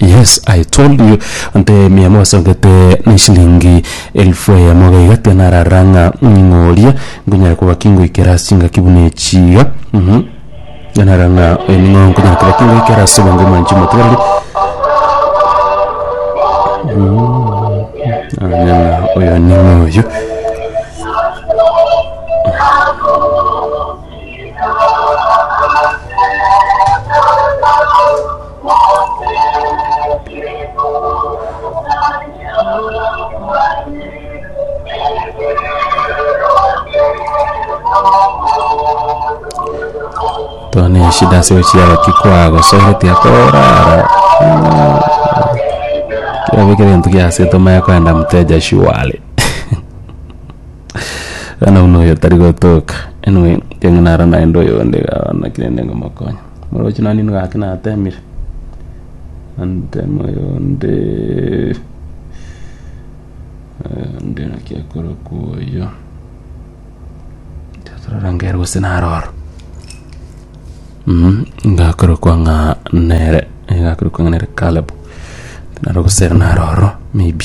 Yes I told you nte mia mwasogete na eshilingi elfu eyemo iga iga tiga narara ng'a ning'oria nkonyara koba kingoikera ase engaki buna echi iga mhm tiga narora ng'a oyo ning'o nkonyara koba kingoikera ase obonge omoanchwa omotigareri nanye ng'a oyo ning'o oyio Tone shida ase gochiara ki kwagosorete akorara kero kere gento giasete omanye kogenda moteja surely bono buna oyo tari gotoka anyway tiga naro naende oyonde iga bono naki rende ngomokonye. Omorochi nanie nigo gaki natemire antemo yonde nde naki akorokwa oyo tatororangere gose naroro Mhm, ngakorokwa ng'a nere eh, ngakorokwa ng'a nere Caleb naro gose naroro maybe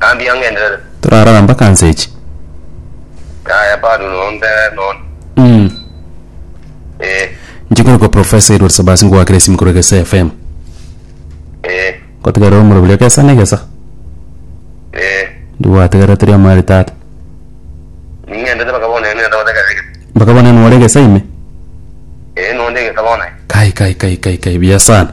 Naambia ng'enderere. Torarora mpaka nse echi. Yaya bado no nde nonya. Mm. Eh. Nchikoro kwa Professor Edward Sabasi ngwakire simu kore Gesa FM. Eh. Kotigarira omoro buria gesa ne gesa. Eh. Ndiwatigara teri amari tata. Ningende bakabona ene ndo daga rege. Bakabona ene wale gesa ime. Eh no nde gesa bona. Kai kai kai kai kai bia sana.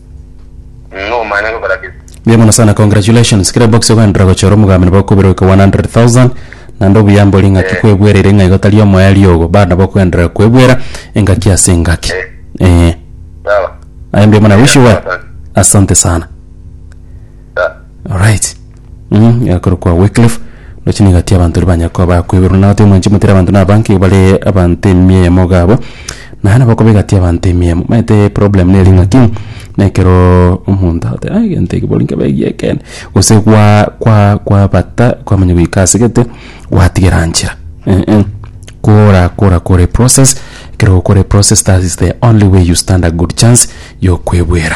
Mm, omanyete okora ki? Mbuya mono sana congratulations kera box okoenderera gochora omogambi nabo okobirwa iko 100000 naende obuya mbori ng'aki Eh. kwebwereire ng'a igo tari omoerio ogo bado nabo okoenderera kwebwera engaki ase engaki Eh. eh Sawa. aye mbuya mono I wish you well Asante. asante sana Sawa. alright Mmh, yakorokwa Wycliffe, ndoche nigo ati abanto riria banyare koba bakweberwa na gati omwanchi motera abanto na abange iga bare abanto emia eyemo iga abwo, na nabo okoba egati y'abanto emia eyemo. Omanyete problem nere ng'aki, na ekero omonto agoteba ai egento eke bori nkebe giekene, gose gwa kwa kwabata kwamanya goika ase gete, gwatigera nchera eeh. Kora kora kora eprocess, ekero okora eprocess that is the only way you stand a good chance y'okwebwera.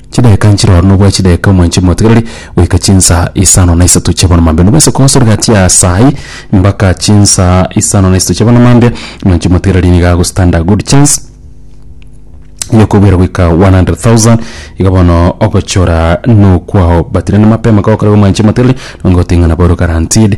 Chidaka nchire oro nobua chidaka omwanchimi motigareri goika chinsa isano na isato chia bono mambia. Nobwese kogosa origati asai mbaka chinsa isano na isato chia bono mambia. Omwanchimi motigareri nigo ago stand a good chance ya okobwera goika 100,000 iga bono ogochora nokwao but rende mapema kogokora omwanchimi motigareri nonye goting'ana boru guaranteed.